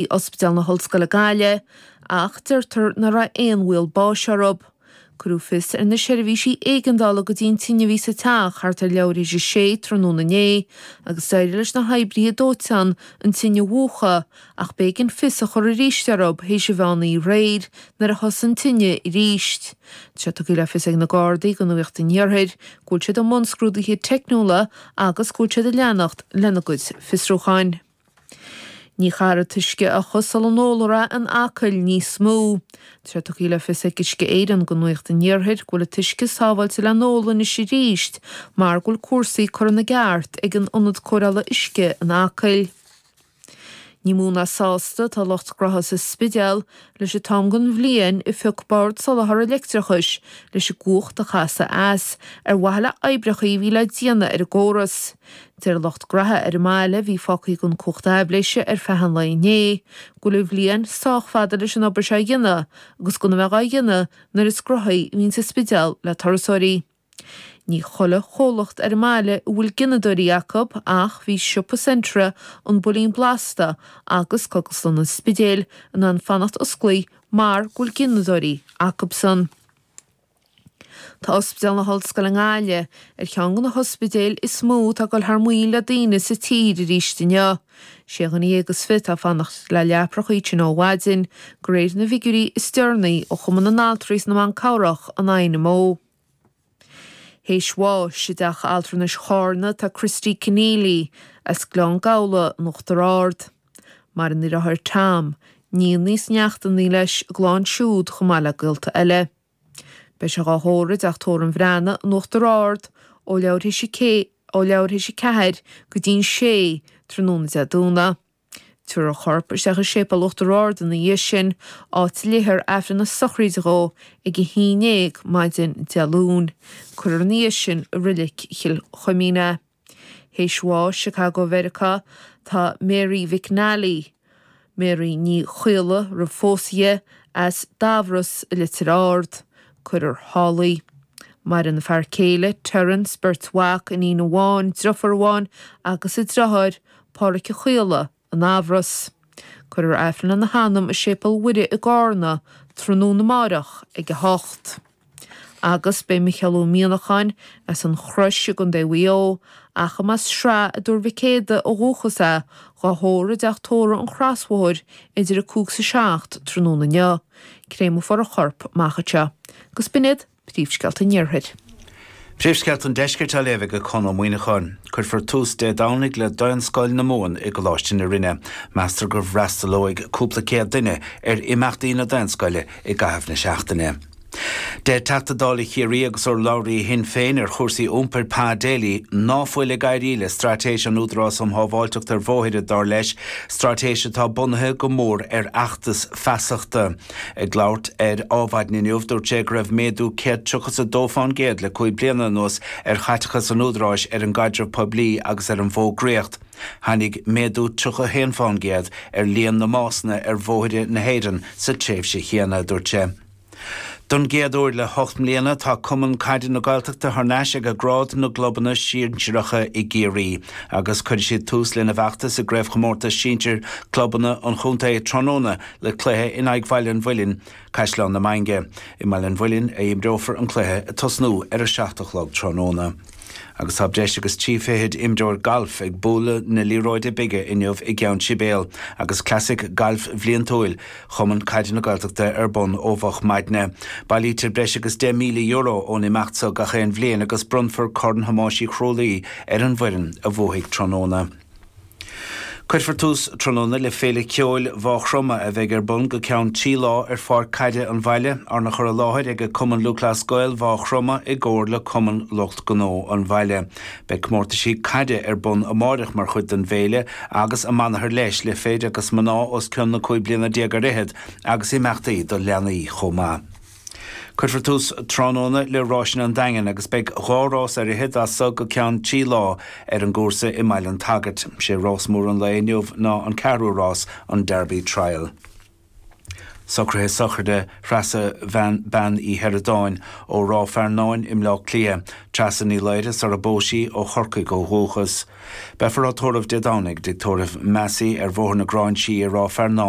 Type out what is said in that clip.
i Ospidéal na hOllscoile Gaillimh ach deirtear nach raibh aon bhaol báis orthu. Cuireadh fios ar na seirbhísí éigeandála go dtí an tine a bhí sa teach thart ar leathuair théis a sé tráthnóna inné agus d'éirigh leis na hoibrithe dóiteáin an tine a mhúchadh ach b'éigean fios a chur arís orthu théis an mheán oíche aréir nuair a thosaigh an tine arís. Tá sé tugtha le fios ag na Gardaí do Nuacht an Iarthair go bhfuil siad i mbun scrúduithe teicniúla agus go bhfuil siad ag leanacht lena gcuid fiosrúcháin. Ní chaithfear an t-uisce a fhiuchadh sula n-ólfar é in Acaill níos mó. Tá sé tugtha le fios ag Uisce Éireann do Nuacht an Iarthair go bhfuil an t-uisce sábháilte le n-ól anois arís mar go bhfuil cúrsaí curtha ina gceart ag an Ionad Cóireála Uisce in Acaill. Ní mó ná sásta atá lucht graithe sa Spidéal leis an t-am den bhliain a phioc Bord Soláthair an Leictreachais leis an gcumhacht a chasadh as ar mhaithe le oibreacha a bhí le déanamh ar an gcóras. Deir lucht graithe ar an mbaile, a bhí fágtha gan cumhacht aibhléise ar feadh an lae inné, go bhfuil an bhliain sách fada leis an obair seo a dhéanamh agus gan a bheith á dhéanamh nuair is gnóthaí a bhíonns an Spidéal le turasóirí. Ní chuile chomhlacht ar an mbaile a bhfuil gineadóirí acu ach bhí siopa Centra, an Builín Blasta agus Cógaslann an Spidéil in ann fanacht osclaithe mar go bhfuil gineadóirí acubsan. Tá Ospidéal na hOllscoile i nGaillimh ar cheann de na hospidéil is mó atá ag dul thar maoil le daoine sa tír arís inniu. Sé dhuine dhéag is fiche atá ag fanacht le leaprachaí ann ó mhaidin, de réir na bhfigiúirí is deireanaí ó Chumann na nAltraí 's na mBan Cabhrach, an INMO. Théis bháis i dTeach Altranais Charna tá Christy Conneely, as Gleann Gabhla, in Uachtar Ard. Mar a ndeir Tom, níl níos neachtanaí leis, glán siúd chomh maith le gaolta eile. Beidh sé dhá thórramh i dTeach Tórraimh an Bhreathnaigh in Uachtar Ard ó leathuair théis a ceathair go dtí'n sé tráthnóna Dé Domhnaigh. Tiúrfar a chorp isteach i Séipéal Uachtar Ard ina dhiaidh sin, áit a léifear Aifreann na sochraide dhó ag a haon déag maidin Dé Luain. Cuirfear ina dhiaidh sin i Reilig Chill Chuimín é. Théis bháis i Chicago, Mheiriceá, tá Mary McNally, Mary Ní Chaola, roimh phósadh dhi, as Damhros i Leitir Ard. Cuirfear thall í. Maireann a fear céile, Terence, beirt mhac, iníon amháin, driofúr amháin, agus a driotháir, Páraic Ó Caola, i nDamhros. Cuirfear Aifreann lena hanam i Séipéal Mhuire i gCarna tráthnóna amárach ag 8. Agus beidh Micheál Ó Mianacháin, as an Chrois i gContae Mhaigh Eo, ach arb as Sraith i dTuar Mhic Éada ó dhúchas é, dhá thórramh i dTeach Tórraimh an Chrosbhóthair idir 5 's 7 tráthnóna inniu. Créamfar a chorp amach anseo. Agus b'in iad. Príomhscéalta an Iarthair. Príomhscéalta an Deiscirt á léamh ag Conn Ó Muíneacháin. Cuirfear tús Dé Domhnaigh le Daonscoil na Mumhan i gColáiste na Rinne. Meastar go bhfreastalóidh cúpla céad duine ar imeachtaí na Daonscoile i gcaitheamh na seachtaine. Deir Teachta Dála Chiarraí agus urlabhraí Shinn Féin ar chúrsaí iompair Pa Daly ná fuil ag éirí le straitéis an Údaráis um Shábháilteacht ar Bhóithre, dar leis, straitéis atá bunaithe go mór ar fheachtas feasachta. Ag labhairt ar Adhmhaidin inniu, dúirt sé go raibh méadú 132 fán gcéad le cúig bliana anuas ar chaiteachas an Údaráis ar an gcaidreamh poiblí agus ar an bhfógraíocht. Tháinig méadú 31 fán gcéad ar líon na mbásanna ar bhóithre na hÉireann sa tréimhse chéanna, a dúirt sé. Don gcéad uair le hocht mbliana, tá Cumann Caide na Gaeltachta thar n-ais ag grád na gclubanna sinsireacha i gCiarraí agus cuirfidh siad tús lena bhfeachtas i gCraobhchomórtas Sinsir Clubanna an Chontae tráthnóna Le cluiche in aghaidh Bhaile an Mhuilinn, Caisleán na Mainge, i mBaile an Mhuilinn a imreofar an cluiche ag tosnú ar a seacht a chlog tráthnóna. Agus tá breis agus trí fichid imreoir gailf ag bualadh na liathróide bige inniu i gCeann Sibéal agus Clasaic Gailf Bhliantúil Chumann Caide na Gaeltachta ar bun ó mhoch maidne. Bailítear breis agus €10,000 ón imeacht so gach aon bhliain agus bronnfar Corn Thomáis Uí Chrualaoi ar an bhfoireann a bhuafaidh tráthnóna. Cuirfear tús tráthnóna le Féile Ceoil Mhá Chromtha a bheidh ar bun go ceann trí lá ar Pháirc Caide an Bhaile, arna chur i láthair ag Cumann Lúthchleas Gael Mhá Chromtha i gcomhar le Cumann Lucht Gnó an Bhaile. Beidh comórtaisí caide ar bun amáireach mar chuid den bhféile agus amanathar leis le fir agus mná os cionn na cúig bliana déag ar fhichead agus imeachtaí do leanaí chomh maith. Cuirfear tús tráthnóna le Ráiseanna an Daingin agus beidh dhá rás ar fhichead as so go ceann trí lá ar an gcúrsa i mBaile an tSagairt. Sé rás mór an lae inniu ná an ceathrú rás, an Derby Trial. Socruithe sochraide Threasa Bean Uí Sheireadáin ó Ráth Fearnáin i mBleá Cliath, Treasa Ní Laoire sar a bpós sí, ó Chorcaigh ó dhúchas. Beifear á tórramh Dé Domhnaigh i dtigh tórraimh Massey ar Bhóthar na Gráinsí i Ráth Fearnáin.